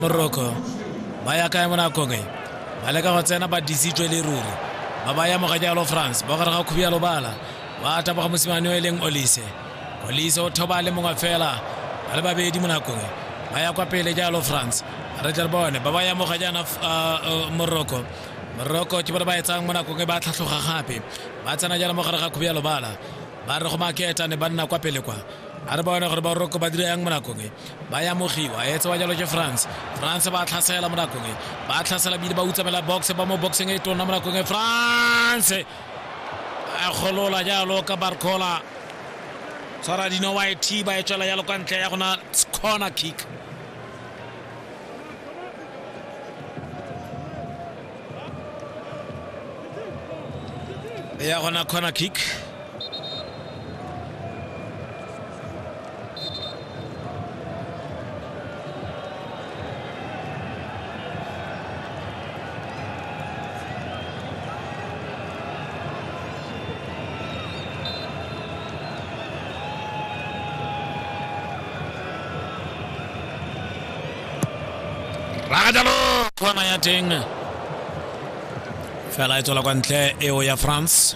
moroko ba ya kae mo nakong e ba leka go tsena ba disitswe le ruri ba ba ya mogajalo france ba gare ga khubialo bala ba taboga mosimane o e leng olise olise o thoba le mongwe fela ba le babedi mo nakong ba ya kwa pele jalo france re tle re bone ba ba ya moga jaana moroko moroko ke bone ba etsang mo nakong e ba tlhatlhoga gape ba tsena jaana mo gare ga khubi ya lobala ba re go maketa ne ba nna kwa pele kwa a re bone gore ba roko ba dira yang mo nakong e ba ya mogiwa e tsewa jalo ke france france ba tlhasela mo nakong e ba tlhasela bile ba utsamela box ba mo boxeng e tonna mo nakong e france a golola jalo ka barcola tshwara dino wa e thiba e tswela jalo kwa ntle ya gona corner kick ya gona corner kick rakajalo kgona ya teng fela e tswela kwa ntle eo ya france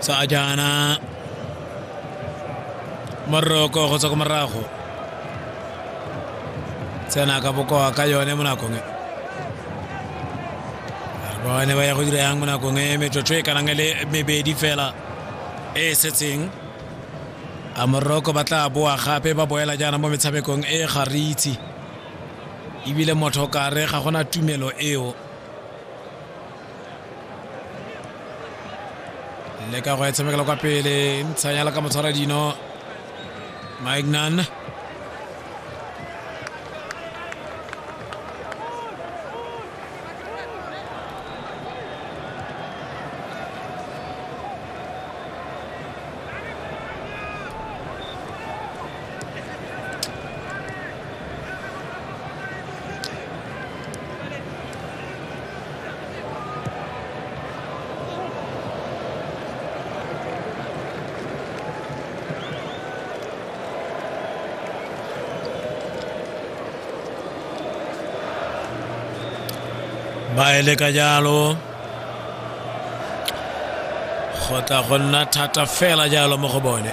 tsa jaana moroko go tswa ko morago tsena ka bokoa ka yone mo nakong e bone ba ya go dira yang mo nakong e metsotso e kanang le mebedi fela e e setseng a moroko ba tla boa gape ba boela jaana mo metshamekong e ga re itse ebile motho kare ga gona tumelo eo le ka go e tshamekela kwa pele ntshanyala ka motshwara dino maignan ba eleka jalo go tla go nna thata fela jalo mo go bone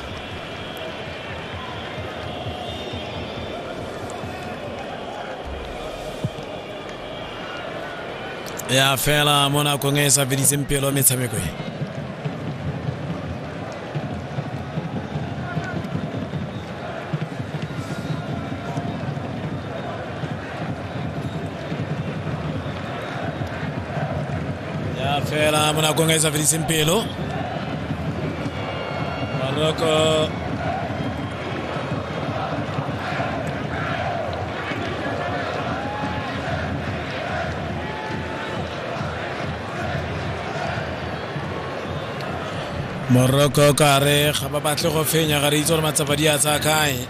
ya fela mo nakong e e sa fediseng pelo metshameko e ya fela mo nakong e sa fediseng pelo morocco morocco kare ga ba batle go fenya ga re itse gore matsapa di a tsaya kae